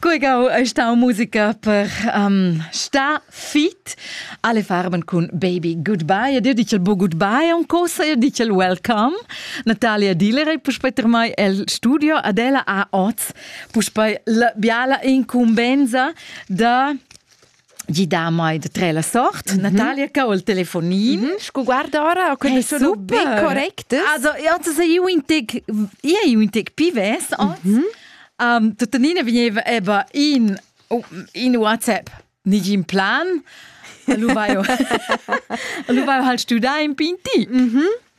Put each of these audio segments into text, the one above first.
Guigau ei stau musica per um, sta fit. Alle farben cun Baby Goodbye. Ed io dice il bo goodbye un cosa, io dice il welcome. Natalia Diller e puspei mai el studio. Adela a oz. Puspei la biala incumbenza da gida mai de tre la sort, mm -hmm. Natalia che ho il telefonin. Mm -hmm. Scu guarda ora, ho quelle sono ben correcte. Also, also se io in tec, io in tec pives, oz, mm -hmm. um, tuttenina veniva eba in, in WhatsApp, nigin plan, lu vaio, lu vaio hal studa in pinti. Mm -hmm.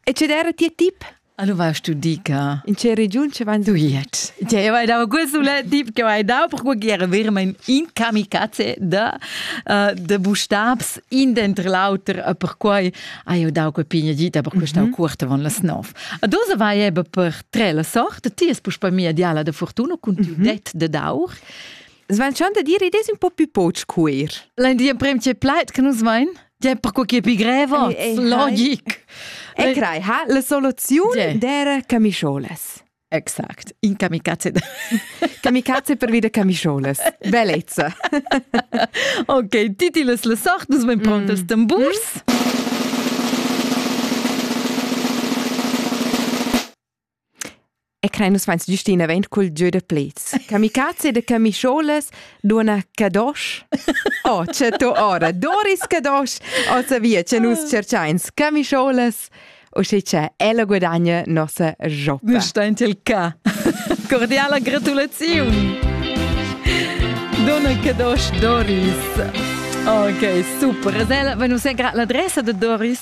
E ce era tia tip? Allora tu dica. In che region ci van du jetzt? Ja, weil da questo le tip che hai da per guer ver mein in kamikaze da uh, de bustabs in dentro l'auter a per quai ha io da que pigna gita per questa mm -hmm. quarta von las 9. A dosa vai eben per tre la sorte ti es puspa mia diala de fortuna con tu mm -hmm. det de daur. Svan schon da dire des un po più poch queer. L'in di prem che plait che nus vain? Tg'è perquai che pi greva, logic. E crai, ha la soluziun d'era camischolas. Exact, in kamikaze. kamikaze per vida camischolas. Bellezza. ok, titilas la sort, nus ben prontas mm. tamburs. Mm. E crein nus veins giustina vein cul gieu da plets. Kamikaze de camischolas, dona Kadosh. Oh, c'è tu ora Doris Kadosh. Ossa via, c'è nus cercains camischolas. O se c'è, ella guadagna nossa jotta. Nu sta in tel ca. Cordiala gratulazione. Dona Kadosh Doris. Ok, super. Zel, venus è l'adressa de Doris.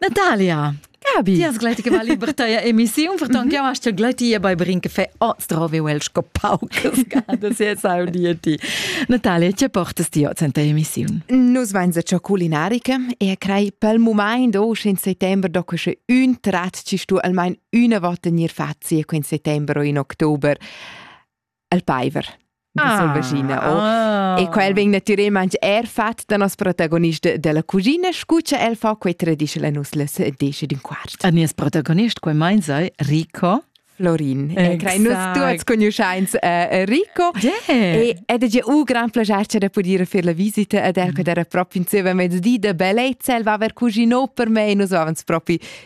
Natalia! Gabi! Ti has gleiti che va liber taya emissiun, ferton mhm. che hast ja gleiti bei bring che fe oh strove el sco paucas gada se sau di ti. Natalia, che portas ti oz in ta emissiun? Nus vain se ciò culinariche e crei pel moment o in settembre dopo che un trat ci stu almain una volta nir fazie in settembre o in oktober. il paiver da ah, selvaschina oh. ah. e quel vegn natirer manch er fat da nos protagonist della cugina scu cha el fa quei traditional nus les desce d'in quart. A nies protagonist quei mein sei Rico Florin. E crei nus tuots conosciains uh, Rico. Yeah. E ed è un gran piacere da poter fare la visita ed er che era proprio insieme a mezz'dì da bellezza, el va aver cucino per me e nus avevamo proprio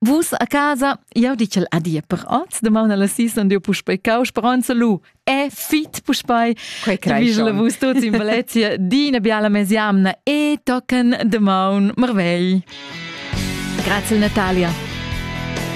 Vus a casa, jau di ch'el adia per oz, damaun alla sis on diu puspei cau, speronza lu, è fit puspei, quei vivla vus tuts in Valencia, dina biala mesiamna e tocken damaun marvegl. Grazie Natalia.